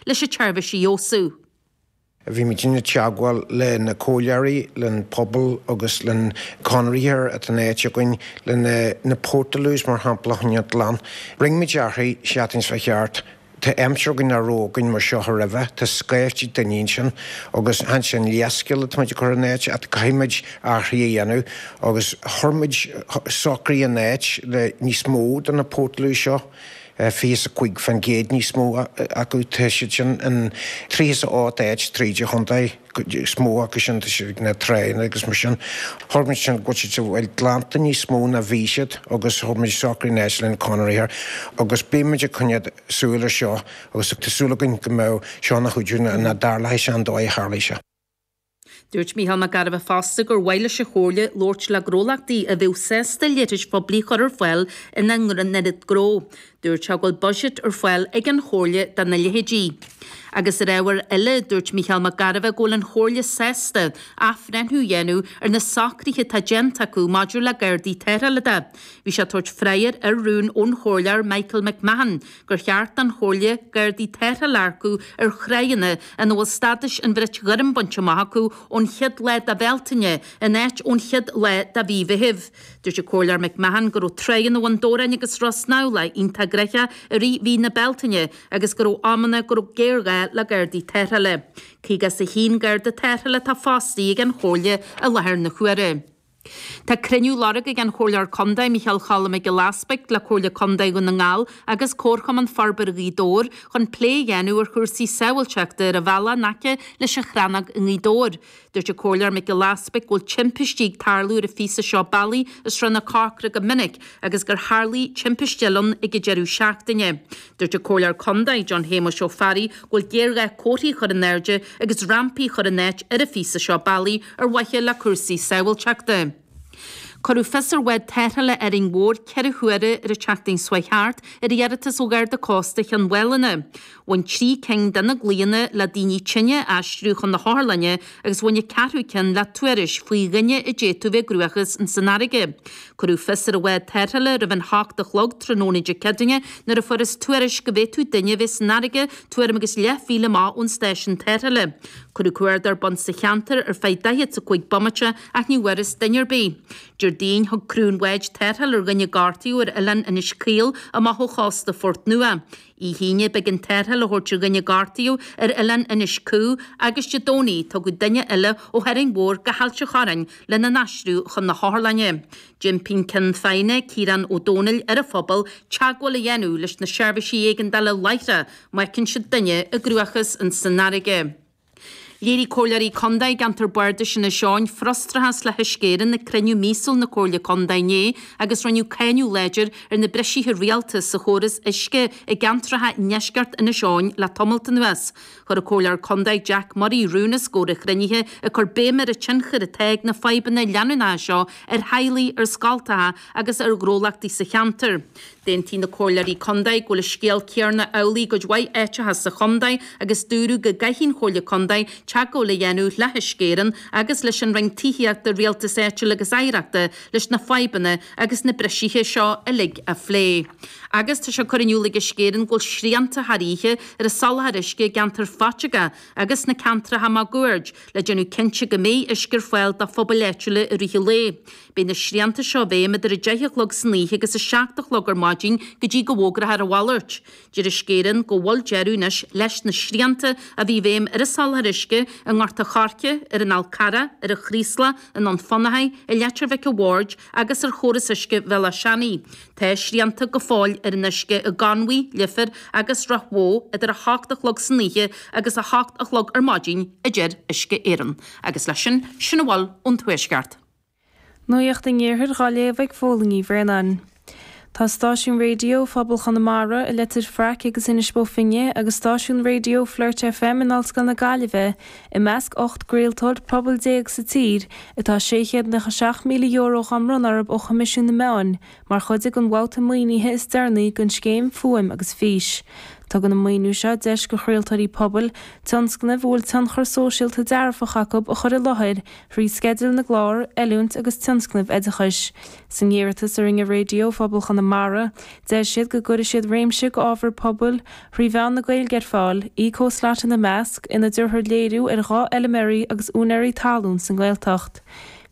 leis an tseirbhís a fheabhsú. Bhímid i dteagmháil le na comhairleoirí, len pobal agus len conraitheoir atá in áit againn, leis na Portaloos mar shampla chun iad a ghlanadh. Rinne muid athrú seachtain 's a chuaigh thart. Tá aimsir againn nach raibh againn mar seo aroimhe, tá scaifte daoine ansin agus chan sin leithscéal ataimid a chur in áit ach caithfimid athrú a dhéanamh agus chuir muid socrú in áit le níos mó de na Portaloos seo. 25% níos mó acu tá siad sin in 38 áit tríd an chontae, is mó acu sin na tránna agus mar sin. Thug muid sin go bhfuil siad glanta níos mó ná bhí siad agus thug muid socrú in áit lenár gconraitheoir agus beidh muid ag coinneáil súil ar seo agus tá súil againn go mbeidh seo ina chuidiú nach dtarlódh sé sa dóigh a tharlaigh sé. Dúirt Mícheál Mac Gairbheith fosta gur mhaith leis an Chomhairle labhairt le gnólachtaí a bheadh sásta leithris phoiblí a chur ar fáil ina ngnó. Dúirt sé go bhfuil buiséad ar fáil ag an Chomhairle do na leithéidí. Agus ar ábhar eile, dúirt Mícheál Mac Gairbheith go bhfuil an Chomhairle sásta athbhreithniú a dhéanamh ar na socruithe atá déanta acu maidir le Gardaí Tarrthála de. Bhí sé ag tabhairt freagra ar rún ón Chomhairleoir Michael McMahon gur cheart don Chomhairle gardaí tarrthála a earcú ar thránna ina bhfuil stádas an Bhrait Ghoirm bainte amach acu ón chéad lá de Bhealtaine in áit ón chéad lá de mhí Mheithimh. Dúirt an Comhairleoir McMahon go raibh tráigheanna Bhun Dobhráin agus Ros Neamhlach iontach gnoitheach i rith mhí na Bealtaine agus go raibh amanna go raibh géar-ghá le gardaí tarrthála. Caoga is a h-aon garda tarrthála atá fostaithe ag an Chomhairle i láthair na h-uaire. Tá cruinniú á lorg ag an Chomhairleoir Contae Micheál Cholm Mac Giolla Easbuig le Comhairle Contae Dhún na nGall agus Comharchumann Forbartha Ghaoth Dobhair chun plé a dhéanamh ar chúrsaí sábhailteachta ar an bhealach in aice leis an Chrannóg i nGaoth Dobhair. Dúirt an Comhairleoir Mac Giolla Easbuig go bhfuil timpistí ag tarlú ar an phíosa seo bealaigh i Srath na Corcra go minic agus gur tharlaigh timpiste eile ann ag an deireadh seachtaine. Dúirt an Comhairleoir Condae John Shéamuis Ó Fearraigh go bhfuil géarghá comharthaí a chur in airde agus rampaí a chur in áit ar an phíosa seo bealaigh ar mhaithe le cúrsaí sábhailteachta. Cuireadh fios ar bhád tarrthála Árainn Mhór ceithre huaire ar an tseachtain seo a chuaigh thart ar iarratas ó Gharda Cósta Chionn Mhálanna. Bhain trí cinn de na glaonna le daoine tinn a aistriú chun na hotharlainne agus bhain an ceathrú ceann le tuairisc faoi dhuine a d'fhéadfadh bheith i gcruachás ins an fharraige. Cuireadh fios ar an bhád tarrthála roimh an hocht a chlog tráthnóna Dé Ceadaoine nuair a fuarthas tuairisc go bhféadfadh duine a bheith san fharraige tuairim agus leath mhíle amach ón stáisiún tarrthála. Cuireadh cuardach ar bun sa cheantar ar feadh daichead is a cúig bomaite ach ní bhfuarthas duine ar bith. Déardaoin, thug criú an bháid tarrtháil ar dhuine gortaithe ar oileán Inis Caoil amach ó chósta Phort Nua. Oíche Aoine b'éigean tarrtháil a thabhairt ar dhuine a gortaíodh ar oileán Inis Cú agus Dé Domhnaigh tugadh duine eile ó Árainn Mhór go hAilt an Chorráin lena n-aistriú chun na hotharlainne. D'impigh an Ceann Feadhna, Ciarán Ó Domhnaill ar an phobal teagmháil a dhéanamh leis na seirbhísí éigeandála láithreach má fheiceann siad duine i gcruachás ins an fharraige. Léirigh Comhairleoirí Contae i gceantar Bardais Inis Eoghain frustrachas le hUisce Éireann ag cruinniú míosúil na Comhairle Contae inné agus rinneadh cáineadh láidir ar na brisithe rialta sa chóras uisce i gceantracha i ndeisceart Inis Eoghain le tamalt anuas. Chuir an Comhairleoir Contae Jack Murray rún os comhair an chruinnithe ag cur béim ar an tionchar atá ag na fadhbanna leanúnacha seo ar theaghlaigh, ar scoltacha agus ar ghnólachtaí sa cheantar. D'aontaigh na Comhairleoirí Contae go bhfuil an scéal céarna amhlaidh i gcuid mhaith áiteacha sa Chontae agus dúradh go gcaithfidh an Chomhairle Contae teagmháil a dhéanamh le hUisce Éireann agus leis an Roinn Tithíochta, Rialtas Áitiúil agus Oidhreachta leis na fadhbanna agus na brisithe seo uilig a phlé. Agus tá sé curtha in iúl ag Uisce Éireann go bhfuil srianta thar oíche ar an soláthar uisce i gceantar Phaiteagó agus sna ceantracha máguaird le déanamh cinnte go mbeidh uisce ar fáil do phobail áitiúla i rith an lae. Beidh na srianta seo i bhfeidhm idir 10 a chlog san oíche agus 7 a chlog ar maidin go dtí go bhfógrófar a mhalairt. Deir Uisce Éireann go bhfuil deireadh anois leis na srianta a bhí i bhfeidhm ar an soláthar uisce i nGort a' Choirce, ar an Fhál Carrach, ar an Chraoslach, i nDún Fionnachaidh, i Leitir Mhic a' Bhaird agus ar chóras uisce Bhéal Átha Seanaidh. Tá srianta go fóill ar an uisce i gConmhaigh, Leifear agus Ráth Bhoth idir 8 a chlog san oíche agus 8 a chlog ar maidin a deir Uisce Éireann. Agus leis sin, sin a bhfuil ón Tuaisceart. Nuacht an Iarthair dhá léamh ag Fódhla Ní Bhraonáin. Tá stáisiún raidió Phobal Chonamara i Leitir Fraic agus Inis Bó Finne agus stáisiún raidió Flirt FM in Ollscoil na Gaillimhe i measc ocht gcraoltóir pobail déag sa tír atá €697,000 dhá mbronnadh orthub ó Choimisiún na Meán Mar chuid den bhabhta maoinithe is deireanaí den scéim Fuaim agus Fís, tugann an maoiniú seo deis do chraoltóirí pobail tionscnaimh a bhfuil tionchar sóisialta dearfach acu a chur i láthair thrí sceidil na gclár, oiliúint agus tionscnaimh oideachais. San iarratas a rinne Raidió Phobal Chonamara, deir siad go gcuirfidh siad réimse d'ábhar pobail thrí mheán na Gaeilge ar fáil, Eco Slot ina measc, ina dtabharfar léiriú ar dhá fheilméaraí agus úinéirí talún sa nGaeltacht.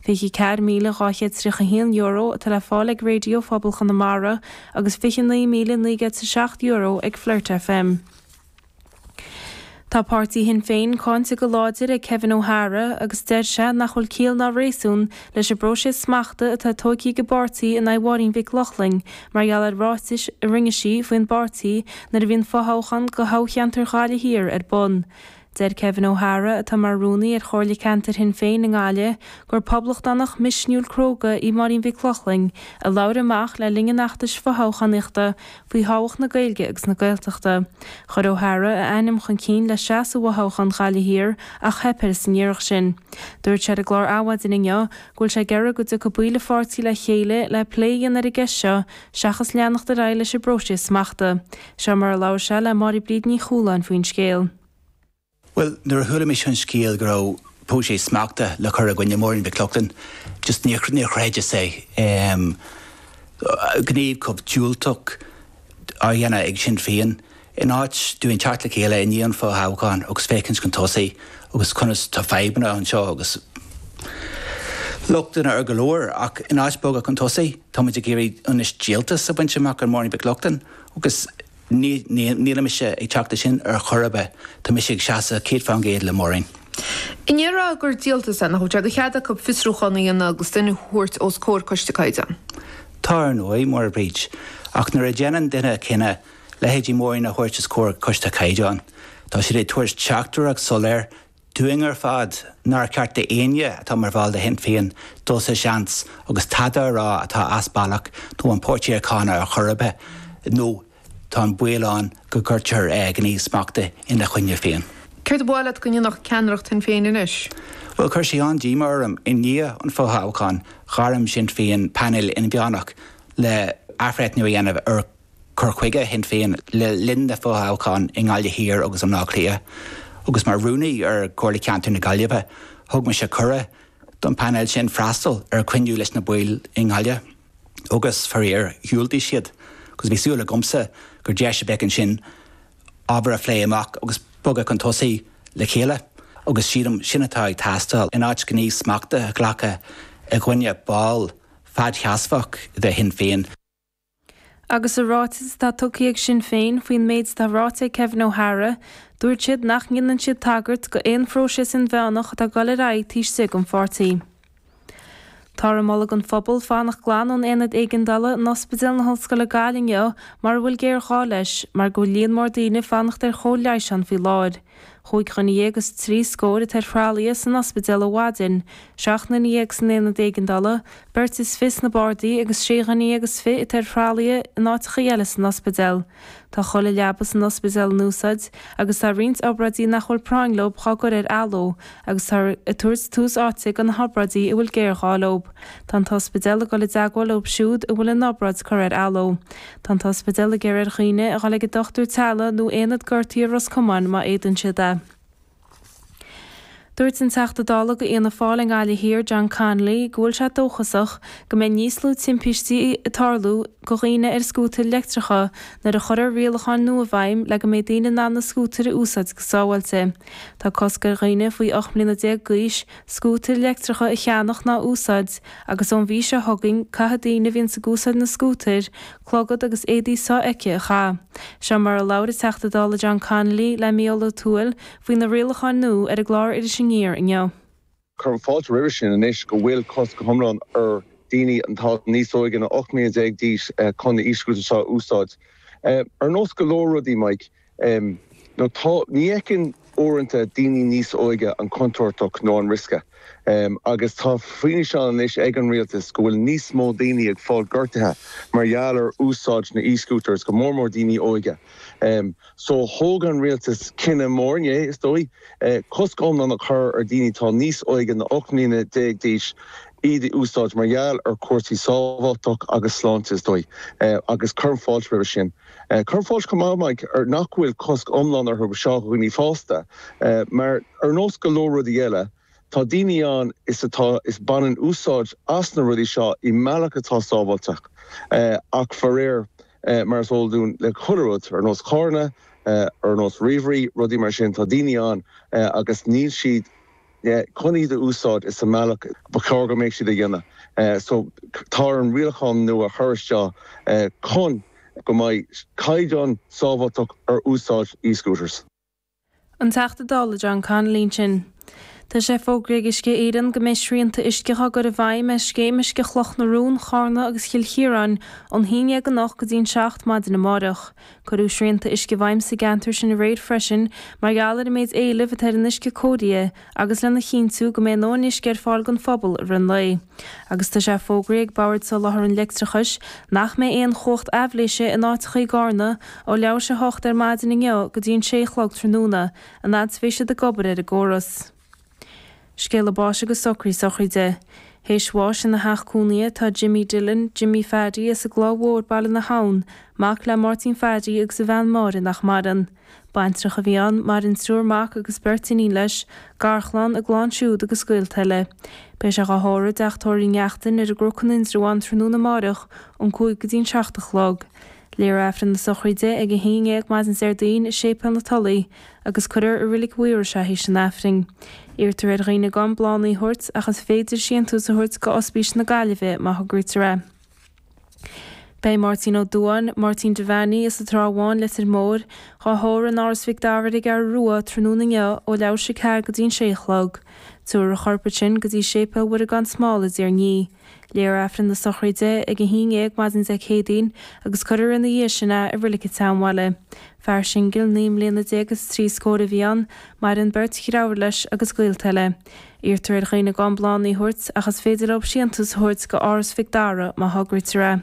€24,231 atá le fáil ag Raidió Phobal Chonamara agus €29,907 ag Flirt FM. Tá páirtí Shinn Féin cáinte go láidir ag Kevin O'Hara agus deir sé nach bhfuil ciall ná réasún leis an bpróiseas smachta atá tóigthe ag an bpáirtí in aghaidh Mháirín Mhic Lochlainn mar gheall ar ráitis a rinne sí faoin bpáirtí nuair a bhí an fothoghchán go thoghcheantar Ghaillimh Thiar ar bun Deir Kevin O'Hara, atá mar Rúnaí ar Chomhairle Ceantair Shinn Féin i nGaillimh, gur poblachtánach misniúil cróga í Máirín Mhic Lochlainn a labhair amach le linn an fheachtais fothoghchánaíochta faoi thábhacht na Gaeilge agus na Gaeltachta. Chuir O'Hara a ainm chun cinn le seasamh i bhfothoghchán Ghaillimh Thiar ach theip air san iarracht sin. Dúirt sé ar an gclár Adhmhaidin inniu go bhfuil sé ag iarraidh go dtiocfadh baill a pháirtí le chéile le plé a dhéanamh ar an gceist seo seachas leanacht ar aghaidh leis an bpróiseas smachta. Seo mar a labhair sé le Máire-Bríd Ní Chualáin faoin scéal. Bhuel, nuair a chuala mise an scéal go raibh próiseas smachta le cur i gcoinne Mháirín Mhic Lochlainn, just níor, níor chreideas é. Em, gníomh chomh diúltach á dhéanamh ag Sinn Féin in áit dúinn teacht le chéile i ndiaidh an fhothoghcháin agus féachaint chun tosaigh agus conas, tá fadhbanna anseo agus lochtanna ar go leor ach in áit bogadh chun tosaigh, táimid ag iarraidh anois díoltas a bhaint amach ar Mháirín Mhic Lochlainn. Agus nílim mise ag teacht leis sin ar chor ar bith, tá mise ag seasamh 100% le Máirín. An ndéarfá gur díoltas é nach bhfuil sé de chead acu fiosrúchán a dhéanamh agus duine a thabhairt os comhair Coiste Caighdeáin. Tá, ar ndóigh, Máire-Bríd, ach nuair a dhéanann duine cinneadh leithéidí Máirín a thabhairt os comhair Coiste Caighdeáin, tá siad ag tabhairt teachtaireacht soiléir dúinn ar fad nár cheart d'éinne atá mar bhall de Shinn Féin dul sa seans agus tada a rá atá as bealach nó an páirtí a cháineadh ar chor ar bith nó tá an baol ann go gcuirtear gníomh smachta ina choinne féin. Céard ba mhaith leat go ndéanfadh ceannaireacht Shinn Féin anois? Bhuel, chuir sé an-díomá orm, i ndiaidh an fhothoghcháin, ghairm Sinn Féin painéal inmheánach le athbhreithniú a dhéanamh ar cur chuige Shinn Féin le linn na fothoghchán i nGaillimh Thiar agus i mBleá Cliath. Agus mar Rúnaí ar Chomhairle Ceantair na Gaillimhe, thug mise cuireadh don phainéal sin freastal ar chruinniú leis na baill i nGaillimh agus, faraor, dhiúltaigh siad agus bhí súil agamsa gur deis a bheadh ansin ábhar a phlé amach agus bogadh chun tosaigh le chéile agus sílim sin atá ag teastáil in áit gníomh smachta a ghlacadh i gcoinne ball fadseasmhach de Shinn Féin. Agus sa ráiteas atá tugtha ag Sinn Féin faoin méid atá ráite ag Kevin O'Hara, dúirt siad nach ndéanann siad tagairt go aon phróiseas inmheánach atá ag dul ar aghaidh taobh istigh den pháirtí. Táthar ag moladh don phobal fanacht glan ón Aonad Éigeandála in Ospidéal na hOllscoile Gaillimh inniu mara bhfuil géarghá leis mar go bhfuil líon mór daoine ag fanacht ar chóir leighis ann faoi láthair. Chúig dhuine dhéag is trí scór atá ar thralaithe san ospidéal ó mhaidin, seacht nduine dhéag san aonad éigeandála, beirt is fiche sna bardaí agus sé dhuine dhéag is fiche atá ar thralaithe in áiteacha eile san ospidéal. Tá chuile leaba san ospidéal in úsáid agus tá roinnt obráidí nach bhfuil práinn leo dhá gcur ar athló agus táthar ag tabhairt tús áite do na hobráidí a bhfuil géarghá leo. Tá an t-ospidéal ag dul i dteagmháil leo siúd a bhfuil a n-obráid curtha ar athló. Tá an t-ospidéal ag iarraidh ar dhaoine a dhul ag an dochtúir teaghlaigh nó Aonad Gortaithe i Ros Comáin má fhéadann siad é. Dúirt an Teachta Dála go Fhianna Fáil i nGaillimh Thiar, John Connolly, go bhfuil sé dóchasach go mbeidh níos lú timpistí ag tarlú go dhaoine ar scútair leictreacha nuair a chuirfear rialacháin nua i bhfeidhm le go mbeidh daoine in ann na scútair a úsáid go sábháilte. Tá cosc ar dhaoine faoi 18 mbliana d'aois scútair leictreacha a cheannach ná a úsáid agus ón mhí seo chugainn caithfidh daoine a bhíonns ag úsáid na scútair clogad agus éadaí so-fheicthe a chaitheamh. Seo mar a labhair an Teachta Dála John Connolly le Micheál Ó Tuathail faoi na rialacháin nua ar an gclár Iris Aniar inniu. Cuirim fáilte roimhe sin anois go bhfuil cosc go hiomlán ar dhaoine atá níos óige ná 18 mbliana d'aois chun na e-scooters seo a úsáid. Ar nós go leor rudaí, Mike, Em. nó tá. Ní fheiceann, uaireanta, daoine níos óige an chontúirt nó an riosca. Em. agus tá fianaise ann anois ag an rialtas go bhfuil níos mó daoine ag fáil gortaithe mar gheall ar úsáid na e-scooters, go mór mór daoine óige. Em. So, thóg an rialtas cinneadh mór inné, is dóigh, eh. cosc iomlán a chur ar dhaoine atá níos óige ná 18 mbliana d'aois iad a úsáid mar gheall ar chúrsaí sábháilteacht agus sláinte, is dóigh. Eh. agus cuirim fáilte roimhe sin. Cuirim fáilte chomh maith, Mike, nach bhfuil cosc iomlán orthu do dhaoine fásta, mar ar nós go leor rudaí eile, tá daoine ann is atá is baineann úsáid as na rudaí seo i mbealach atá sábháilte, ach faraor, mar is eol dúinn le chuile rud, ar nós carranna, ar nós ríomhairí, rudaí mar sin, tá daoine ann agus níl siad. chun iad a úsáid sa mbealach ba chóir go mbeadh siad a dhéanamh so tá ar an rialtas rialacháin nua a chur isteach chun go mbeidh caighdeán sábháilteacht ar úsáid e-scooters. An Teachta Dála John Connolly ansin. Tá sé fógraithe ag Uisce Éireann go mbeidh srianta uisce dhá gcur i bhfeidhm ar Scéim Uisce Chloch na Rón, Charna agus Chill Chiaráin ón 11 anocht go dtí an 7 maidin amárach. Cuireadh srianta uisce i bhfeidhm sa gceantar sin aréir freisin mar gheall ar an méid éilimh atá ar an uisce cóireáilte agus lena chinntiú go mbeidh a ndóthain uisce ar fáil don phobal i rith an lae agus tá sé fógraithe ag Bord Soláthair an Leictreachais nach mbeidh aon chumhacht aibhléise in áiteacha i gCarna ó leathuair théis a 8 ar maidin inniu go dtí an 6 a chlog tráthnóna an fhad is bheidh siad ag obair ar an gcóras. Scéalta báis agus socruithe sochraide. Théis bháis ina theach cónaithe tá Jimmy Dillon, Jimmy Phaddy, as an gCloich Mhór, Baile na hAbhann, mac le Máirtín Phaddy agus a bhean Máire nach maireann. Baintreach a bhí ann, maireann triúr mac agus beirt iníon leis, garchlann, a gclann siúd agus gaolta eile. Beidh sé dhá thórramh i dTeach Tórraimh Uí Neachtain ar an gCnocán in Indreabhán tráthnóna amárach ón cúig go dtí an seacht a chlog. Léifear Aifreann na sochraide ag a haon déag maidin Déardaoin i Séipéal na Tulaí. agus cuirfear i Reilig Mhaírois í tar éis an Aifrinn. Iarrtar ar dhaoine gan bláthannaí a thabhairt ach is féidir síntiús a thabhairt go Ospís na Gaillimhe má thograítear é. Beidh Máirtín Ó Dubháin, Máirtín Devaney as an Trá Bháin Leitir Móir, dhá thórramh in Áras Mhic Dara ar an gCeathrú Rua tráthnóna inniu ó leathuair théis 4 go dtí an 6 a chlog. Tabharfar a chorp ansin go dtí Séipéal Mhuire Gan Smál i dTír an Fhia. Léifear Aifreann na sochraide ag a haon dhéag maidin Dé Céadaoin agus cuirfear ina dhiaidh sin é i Reilig an tSeanbhaile. Fear singil naoi mbliana déag is trí scór a bhí ann, maireann beirt dhreithiúr leis agus gaolta eile. Iarrtar ar dhaoine gan bláthannaí a thabhairt ach is féidir leo síntiús a thabhairt go Áras Mhic Dara má thograítear é.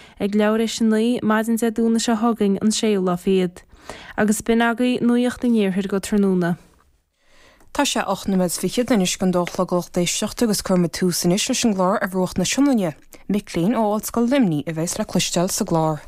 Ag leathuair théis a naoi maidin Dé Domhnaigh seo chugainn an séú lá fichead. Agus b'in agaidh nuaíocht an Iarthair go tráthnóna. Tá sé ocht noiméad 's fichead anois chun dó a chlog lucht éisteachta agus cuirfimid tús anois leis an gclár ar bhruach na Sionainne. Mic léinn ó Ollscoil Luimní a bhéas le cloisteáil sa gclár.